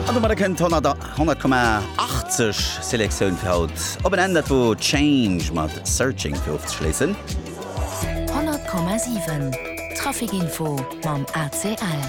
An domadder kënnt d'Honnert 100,80 Selektioun fir haut op en Enn. Dat wor Change mat Searching fir ofzeschléissen. 100,7 Traficinfo mam ACL.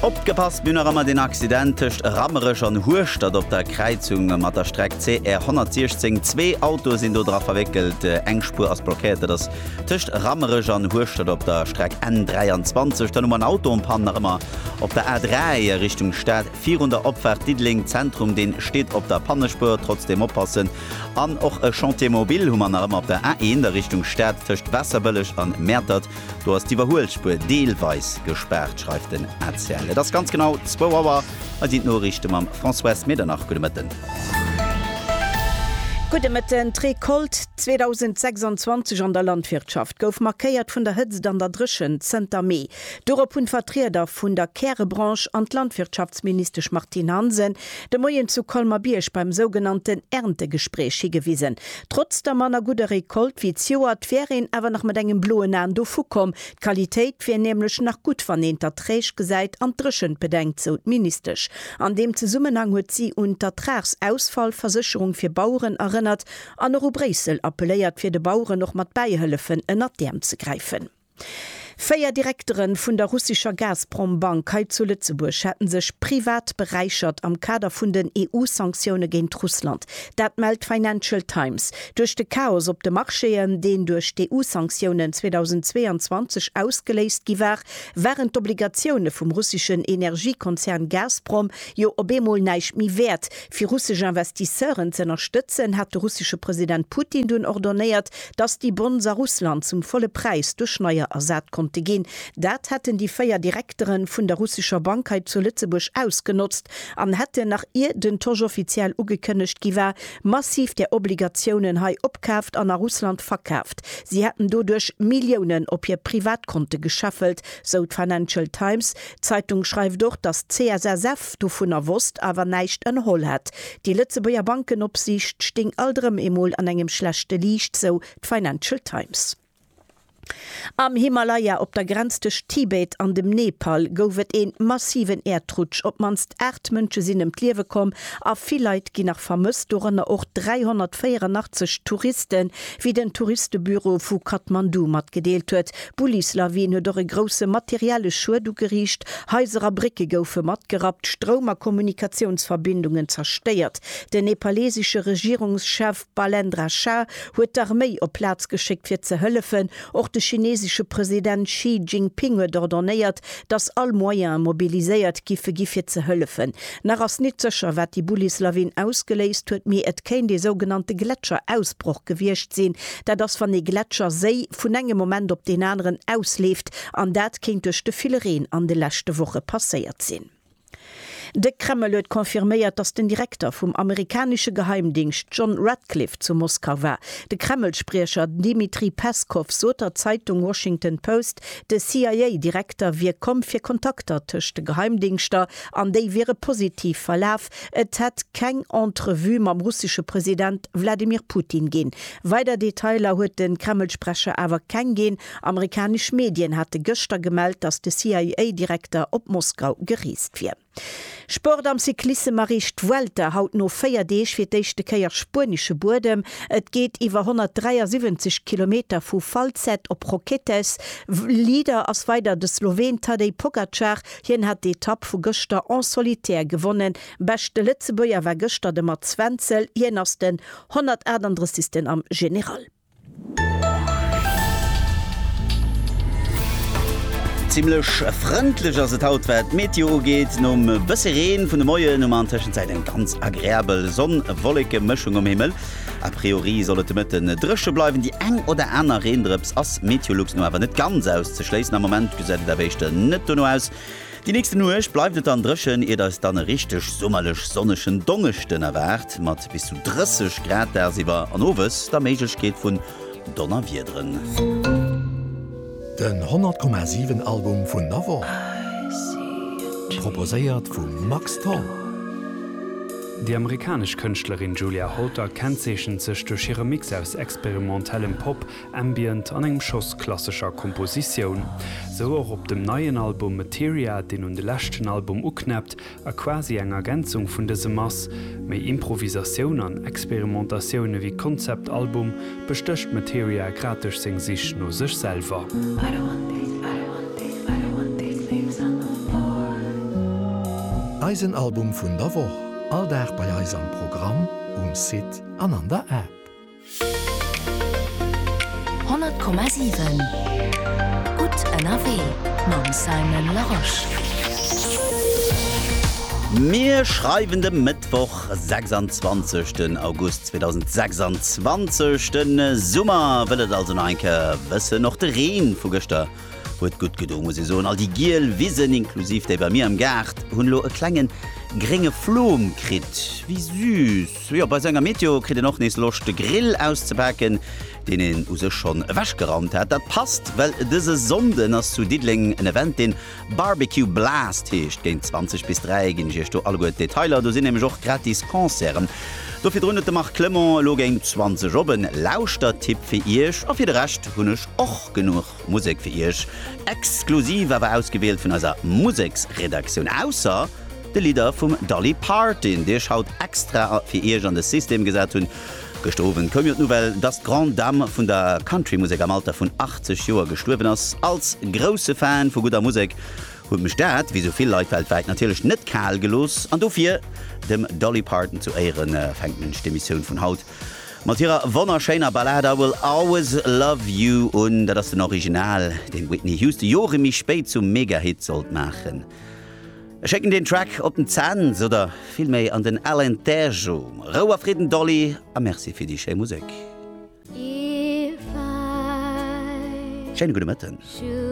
Opgepasst, mir hunn nach ëmmer deen Accident tëscht Rammerech an Hueschtert op der Kräizung mat der Streck CR 116. Zwee Autoe sinn do dra verwéckelt, eng Spuer ass blockéiert. Dat ass Tëscht Rammerech an Hueschtert op der Streck N23, dann hu mer en Autopann nach ëmmer op der A3 a Richtung Stad virun der Opfaart Diddeleng Zentrum, dee steet op der Pannespuer, trotzdeem oppassen. An och e Chantier mobile hu mer nach ëmmer op der A1 a Richtung Stad tëscht Waasserbëlleg an Mäertert, do ass d'Iwwerhuelspuer deelweis gespaart, schreift den ACL. Et ass ganz genau zwou Auer. Hei sinn d'Noriichte mam Françoise Medernach. Gudde Mëtten. Gudde Mëtten. D'Recolte 2026 an der Landwirtschaft gouf markéiert vun der Hëtzt an der Dréchent zënter Mee. Dorop hunn d'Vertrieder vun der Kärebranche an d'Landwirtschaftsministesch Martine Hansen de Moien zu Colmer-Bierg beim sougenannten Erntegespräch higewisen. Trotz der manner gudder Recolte wéi d'Joert, wär een awer nach mat engem bloen Aen dovu komm, D'Qualitéit wier nämlech nach gutt, wann een d'Erträg gesäit an d'Dréchent bedenkt, sou d'Ministesch. An deem Zesummenhang huet si un d'Ertragsausfallversécherung fir Baueren erënnert an och u Bréissel appelléiert, fir de Baueren och mat bäihëllefen ënnert d'Äerm ze gräifen. Véier Direktere vun der russescher Gazprom-Bank hei zu Lëtzebuerg hätte sech privat beräichert am Kader vun den EU-Sanktioune géint Russland. Dat mellt d'Financial Times. Duerch de Chaos op de Marchéen, deen duerch d'EU-Sanktiounen 2022 ausgeléist gi war, waren d'Obligatioune vum russeschen Energiekonzern Gazprom jo op eemol näischt méi wäert. Fir russesch Investisseuren z'ënnerstëtzen, hat de russesche President Putin dunn ordonéiert, datt déi Bonds a Russland zum volle Präis duerch neier ersat konnte ginn. Dat hätten déi véier Direktere vun der russescher Bank hei zu Lëtzebuerg ausgenotzt an hätten, nach ier den Tosch offiziell ugekënnegt gi war, massiv där Obligatiounen hei opkaaft an a Russland verkaaft, si hätten doduerch Milliounen op hir Privatkonte gescheffelt, sou d'Financial Times. D'Zeitung schreift och, datt d'CSSF dovunner wosst, awer näischt ënnerholl hätt. Déi Lëtzebuerger Bankenopsiicht stéing alt erëm emol an engem schlechte Liicht, sou d'Financial Times. Am Himalaya op der Grenz tëscht Tibet an dem Nepal gouf et ee massiven Äerdrutsch. Op d'mannst 8 Mënsche sinn ëm d'Liewe komm a vill Leit ginn nach vermësst, dorënner och 384 Touristen, wéi den Touristebüro vu Kathmandu matgedeelt huet. D'Bullislawin huet och e grousse materielle Schued ugeriicht, Haiser a Brécke goufe matgerappt, Stroum a Kommunikatiounsverbindungen zerstéiert. Den nepalesesche Regierungschef, D'Balendra Shah huet d'Arméi op d'Plaz geschéckt fir ze hëllefen. Och de chinesesche President Xi Jinping huet ordonnéiert, datt all Moyene mobiliséiert giffe gi fir ze hëllefen. Nach ass nit sécher wat déi Bullis-Lawin ausgeléist huet, mee et kéint ee sougenannte Gletscher-Ausbroch gewiescht sinn. Dat ass wann ee Gletscher, Séi, vun engem Moment op deen aneren ausleeft, an dat kéint duerch de ville Reen an de leschte Woche passéiert sinn. De Kreml huet confirméiert, datt den Direkter vum amerikanesche Geheimdingscht John Ratcliffe zu Moskau war. De Kreml-Spriecher Dmitri Peskow sot der Zeitung Washington Post, de CIA-Direkter wier komm fir Kontakter tëscht de Geheimdingschter an déi wiere positiv verlaf. Et hätt keng Entrevue mam russesche President Wladimir Putin ginn. Weider Detailer huet de Kreml-Sprecher awer keng ginn. Amerikanesch Medien hate gëschter gemellt, datt de CIA-Direkter op Moskau gereest wier. Sport am Cyclissem Erreecht d'Vuelta haut no 4 Deeg fir d'éischte Kéier spuenesche Buedem. Et geet iwwer 173 Kilometer vu Falset op Roquetes. Leader ass weider de Sloween Tadej Pogacar. Hien hat d'Etapp vu gëschter en solitaire gewonnen. Beschte Lëtzebuerger war gëschter de Mats Wenzel. Hien ass den 138. am General. Zimlech frëndlech ass et haut wat d'Meteo ugeet. Nom bësse Reen vun de Moien hu mer an Tëschenzäit eng ganz agreabel Sonn-Wolleke-Mëschung um Himmel. A priori soll et de Mëtte dréche bleiwen, déi eng oder aner Reendrëps ass meteolux no awer net ganz auszeschléissen. Am Moment gesäit et awer éischter net dono aus. Déi nächste Nuecht bleift et dann dréchen, iert eis dann e richteg summerlech sonnegen Dongeschden erwaart, mat bis zu 30 Grad dagsiwwer an owes der Méiglechkeet vun Donnerwiederen. Den 100 Komma 7 Album vun der Woch, proposéiert vum Max Tholl. Déi amerikanesch Kënschtlerin Julia Holter kennzeechent sech duerch hire Mix aus experimentellem Pop, Ambient an engem Schoss klassescher Kompositioun. Sou och op dem neien Album Materia, deen un de leschten Album uknäppt a quasi eng Ergänzung vun dësem ass. Méi Improvisatioun an Experimentatioun ewéi Konzeptalbum bestécht Materia grad duerch seng Sich no sech selwer. Eisen Album vun der Woch, all Dag bei eis am Programm, um Site an an der App. 100,7 Gutt ënnerwee mam Simon Larosche. Mir schreiwen de Mëttwoch 26 den August 2026. De Summer wëll et also nach eng Kéier wëssen. Och de Reen vu gëschter huet gutt gedo muss ee soen. All déi giel Wisen, inklusiv déi bei mir am Gaart, hunn elo e klengen grénge Flom kritt. Wéi süß! Jo, bei esou enger Météo kritt een och nees Loscht de Grill auszepaken, deen een u sech schonn ewechgeraumt hat. Dat passt, well dëse Sonnden ass zu Diddeleng en Event, deen Barbecue Blast heescht. Géint 20 bis 3 ginn ech iech do alleguer d'Detailer. Do sinn nämlech och gratis Concerten. Do virdrun huet de Marc Clement elo géint 20 op en Lauschtertipp fir iech. A fir de Rescht hunn ech och genuch Musek fir iech, exklusiv awer ausgewielt vun eiser Museksredaktioun. Ausser. De Lidder vum Dolly Parton, dee ech haut extra fir iech an de System gesat hunn. Gëschter Owend koum jo d'Nouvelle, dass d'Grande Dame vun der Countrymusek am Alter vun 80 Joer gestuerwen ass. Als grousse Fan vu gudder Musek huet mech dat, wéi sou vill Leit weltwäit, natierlech net kal gelooss. An dofir, dem Dolly Parton zu Éiere fänkt mech d'Emissioun vun haut mat hirer wonnerschéiner Ballad I Will Always Love You un. Dat ass den Original, deen d'Whitney Houston Jore méi spéit zum Megahit sollt maachen. Ech schécken deen Track op den Cents oder vill méi an den Alain Terjo. Rou a Fridden Dolly a Merci fir déi schéi Musek. Schéine gudde Mëtten.